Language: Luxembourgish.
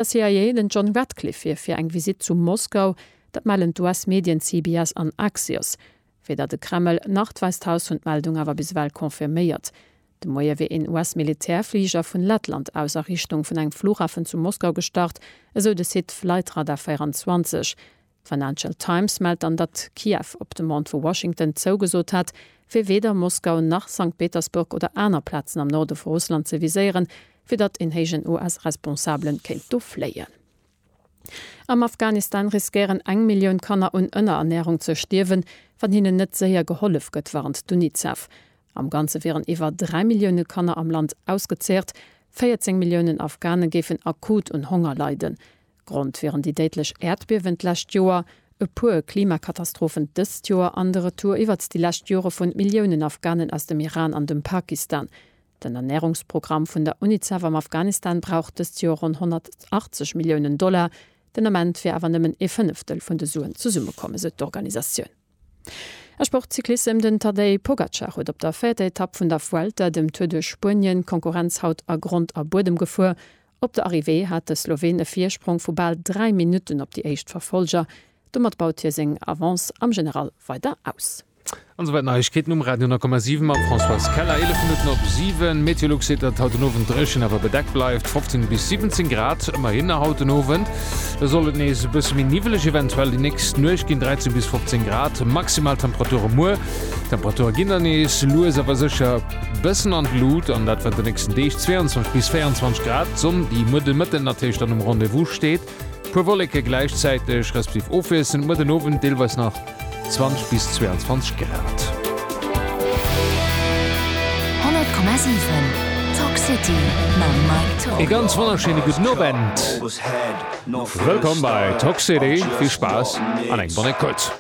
E CIA-Agent John Ratcliffe wier fir eng Visitt zu Moskau, dat mellen d'US-Medien CBS an Axios. Weder de Kreml nach d'Wäisst Haus hunn d'Meldung awer bis ewell confirméiert. De Moie wier een US-Militärfliger vun Lettland aus a Richtung vun engem Flughafen zu Moskau gestart, esou de Site Flightradar 24. D'Financial Times mellt dann, datt Kiew op Demande vu Washington zougesot hat, fir weder Moskau nach Sankt Petersburg oder aner Plazen am Norde vu Russland ze viséieren, fir datt een héijen US-Responsabele kéint do fléien. Am Afghanistan riskéieren eng Millioun Kanner un Ënnerernärung ze stierwen, wann hinnen net séier gehollef gëtt, warnt d'UNICEF. Am Ganze wieren iwwer dräi Millioune Kanner am Land ausgezeecht, 14 Milliounen Afghane géifen akut un Honger leiden. Grond wieren déi déidlech Äerdbiewen d'lescht Joer, e puer Klimakatastrophen dëst Joer an de Retour iwwert déi lescht Jore vun Milliounen Afghanen aus dem Iran an dem Pakistan. Den Ernärungsprogramm vun der Unicef am Afghanistan brauch dëst Joer ronn 180 Milliounen Dollar. Den Ament wier awer nëmmen ee Fënneftel vun de Suen zesummekomm, esou d'Organisatioun. A Sport, Cyclissem, Den Tadej Pogacar huet op der véierter Etapp vun der Vuelta, dem Tour de Spuenien, d'Konkurrenz haut a Grond a Buedem gefuer. Op der Arrivée hat de Sloween e Virsprong vu bal 3 Minutten op déi éischt Verfollger. Domat baut hie seng Avance am General weider aus. An esouwäit Neiegkeeten um Radio 10,7 mam Françoise Keller. 11 Minutten op 7. Meteolux seet, datt haut den Owend dréchen awer bedeckt bleift, 15 bis 17 Grad ëmmerhin haut den Owend. Da soll et nees e bësse méi niwweleg eventuell déi nächst Nuecht ginn, 13 bis 15 Grad maximal Temperature muer. D'Temperature ginn dann nees lues awer sécher e bëssen an d'Lut an dat während de nächsten Deeg, 22 bis 24 Grad. D'Sonn, déi muer de Mëtten natierlech dann um Rendez-vous steet, e puer Wolleke gläichzäiteg, respektiv ofwiesselnd muer den Owend deelweis nach. 20 bis 22 Grad. 100,7 Talk City mam Mike Talk. Ee ganz wonnerschéine gudden Owend. Wëllkomm bei Talk City, vill Spaass an eng bonne écoute.